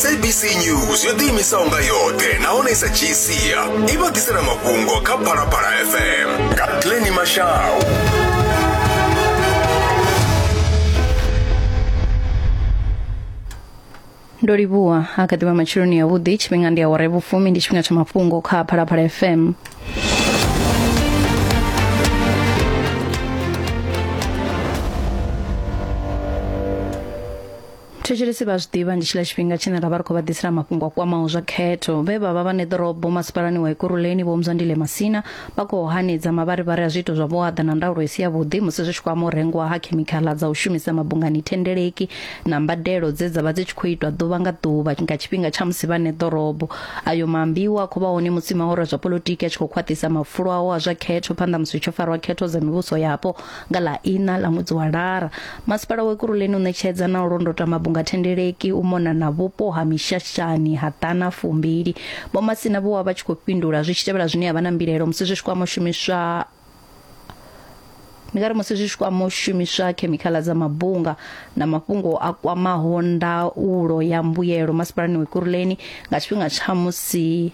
sabc news yo ḓiimisaho nga yoṱhe nahone i sa dzhii sia i vha ḓisela mafhungo kha phalaphala fm nga pleni mashau ndo livhuwa a kha ḓivha matsheloni yavhuḓi tshifhinga ndi awara vhufumi ndi tshifhinga tsha mafhungo kha phalaphala fm thetshelesi vha zwi ḓivha ndi tshiḽa tshifhinga tshine ra vha ri khou vha ḓisela mafhungo a kwamaho zwa khetho vhe vha vha vha neḓorobo masipalani wa ikuruleni vho mzwandile masina vha khou hanedza mavharivhari a zwiito zwa vhuaḓa na ndaulo i si yavhuḓi musi zwi tshi kwama u rengwa ha khemikhala dza u shumisa mabungani thendeleki na mbadelo dze dza vha dzi tshi khou itwa ḓuvha nga ḓuvha nga tshifhinga tsha musi vha neḓorobo ayo maambiwa a khou vha hone musi mahoro a zwa polotiki a tshi khou khwaṱhisa mafulo ao a zwa khetho phanḓa musi hu tshi farwa khetho dza mivhuso yapo Nga ḽa iṋa ḽa ṅwedzi wa Lara, Masipala wa Ekurhuleni u ṋetshedza na u londota mabunga thendeleki u mona na vhupo ha Mishashani ha ḓana fumbili. Vho Masina vho vha vha tshi khou fhindula zwi tshi tevhela zwine ya vha na mbilaelo musi zwi tshi kwama u shumiswa ndi nga ri musi zwi tshi kwama u shumiswa khemikhala dza mabunga na mafhungo a kwamaho ndaulo ya mbuyelo masipalani wa Ekurhuleni nga tshifhinga tsha musi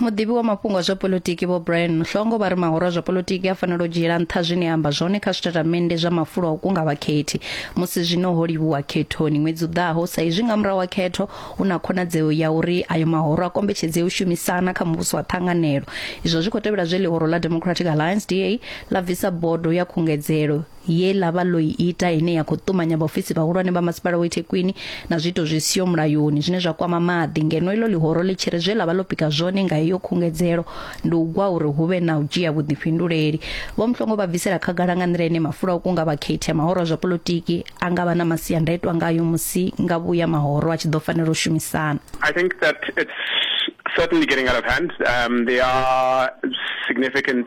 muḓivhi wa mafhungo a zwa politiki vho brian muhlongo vha ri mahoro a zwa politiki a fanela u dzhiela nṱha zwine a amba zwone kha zwitatamennde zwa mafulo a u kunga vhakhethi musi zwino ho livhuwa khethoni ṅwedzi u ḓaho sa izwi nga murahu ha khetho hu na khonadzeo ya uri ayo mahoro a kombetshedze u shumisana kha muvhuso wa ṱhanganelo izwo zwi khou tevhela zwe ḽihoro ḽa democratic alliance da ḽa bvisa bodo ya khungedzelo ye ḽa vha ḽo i ita ine ya khou ṱumanya vhaofisi vhahulwane vha masipala wa ithekwini na zwiito zwi siho mulayoni zwine zwa kwama maḓi ngeno iḽo ḽihoro ḽi tshi ri zwe ḽa vha ḽo pika zwone nga heyo khungedzelo ndi u gwa uri hu vhe na u dzhia vhuḓifhinduleli vho mhlongo vha bvisela khagala nga nḓila ine mafula o kunga vhakhethi a mahoro a zwa polotiki a nga vha na masiandaitwa ngayo musi nga vhuya mahoro a tshi ḓo fanela u shumisana I think that it's certainly getting out of hand. Um, there are significant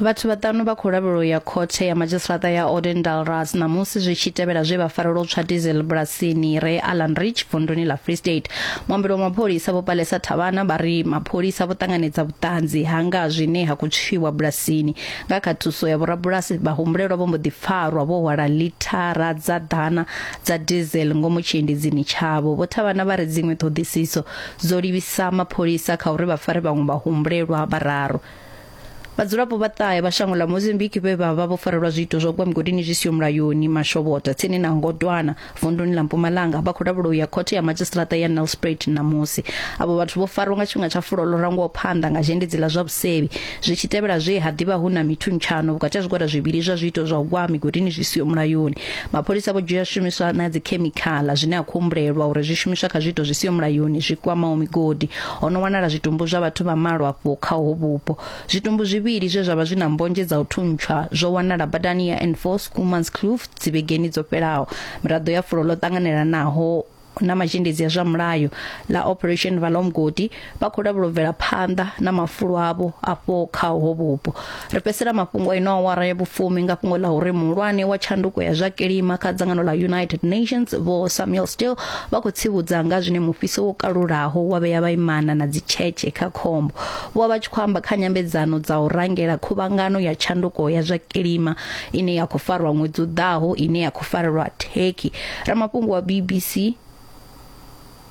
Vhathu vhaṱanu vha khou lavhelwa u ya khothe ya madzhisiṱaṱa ya Odendalras ṋamusi zwi tshi tevhela zwe vha farelwa u tswa diesel bulasini re Allan Ridge vunduni ḽa Free State. Muambeli wa mapholisa Vho Palesa Thavhana vha ri mapholisa vho ṱanganedza vhuṱanzi ha nga zwine ha khou tswiwa bulasini. Nga kha thuso ya vhorabulasi, vhahumbulelwa vho mbo ḓi farwa vho hwala lithara dza ḓana dza diesel ngomu tshiendidzini tshavho. Vho Thavhana vha ri dziṅwe ṱhoḓisiso dzo livhisa mapholisa kha uri vha fare vhaṅwe vhahumbulelwa vhararu. Vhadzulapo vha ṱahe vha shango ḽa Mozambique vhe vha vha vho farelwa zwiito zwa u gwa migodini zwi siho mulayoni Mashobota tsini na Ngodwana vunduni ḽa Mpumalanga vha khou lavhelwa u ya khothe ya madzhisiṱiraṱa ya Nelspruit ṋamusi. Avho vhathu vho farwa nga tshifhinga tsha fulo ḽo rangwaho phanḓa nga zhendedzi ḽa zwa vhusevhi zwi tshi tevhela zwe ha ḓivha hu na mithuntshano vhukati ha zwigwada zwivhili zwa zwiito zwa u gwa migodini zwi siho mulayoni. Mapholisa vho dzhia zwishumiswa na dzikhemikhala zwine ha khou humbulelwa uri zwi shumiswa kha zwiito zwi siho mulayoni zwi kwamaho migodi. Ho no wanala zwitumbu zwa vhathu vha malo afho kha ho vhupo. Zwitumbu zwivhili zwe zwa vha zwi na mbodzhe dza u thuntshwa zwo wanala badani ya N4 Schoolmanskloof dzivhegeni dzo fhelaho. Miraḓo ya fulo ḽo ṱanganelanaho na mazhendedzi a zwa mulayo ḽa Operation Valomgodi vha khou lavhelobvela phanḓa na mafulo avho afho kha ho vhupo. ri fhedzisela mafhungo a ino awara ya vhufumi nga fhungo ḽa uri muhulwane wa tshanduko ya zwa kilima kha dzangano ḽa united nations vho samuel still vha khou tsivhudza nga zwine mufhiso wo kalulaho wa vhea vhaimana na dzitshetshe kha khombo vho vha vha tshi khou amba kha nyambedzano dza u rangela khuvhangano ya tshanduko ya zwa kilima ine ya khou farwa ṅwedzi u ḓaho ine ya khou farelwa turkey ramafhungo wa bbc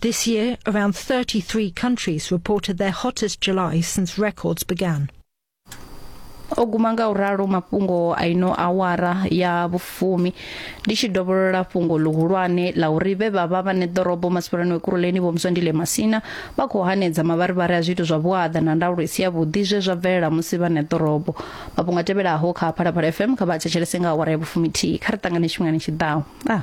This year, around 33 countries reported their hottest July since records began. o guma nga u ralo mafhungo a ino awara ya vhufumi ndi tshi dovholola fhungo ḽihulwane ḽa uri vhe vha vha vhane ḓorobo masipalani wekuruleni vho mswandile masina vha khou hanedza mavharivhari a zwiito zwa vhuaḓa na ndaulo i si yavhuḓi zwe zwa bvelela musi vhane ḓorobo mafhungo a tevhelaho kha phalaphala fm kha vha thetshelese nga awara ya vhufumi thihi kha ri ṱangane tshifhingani tshi ḓaho ah.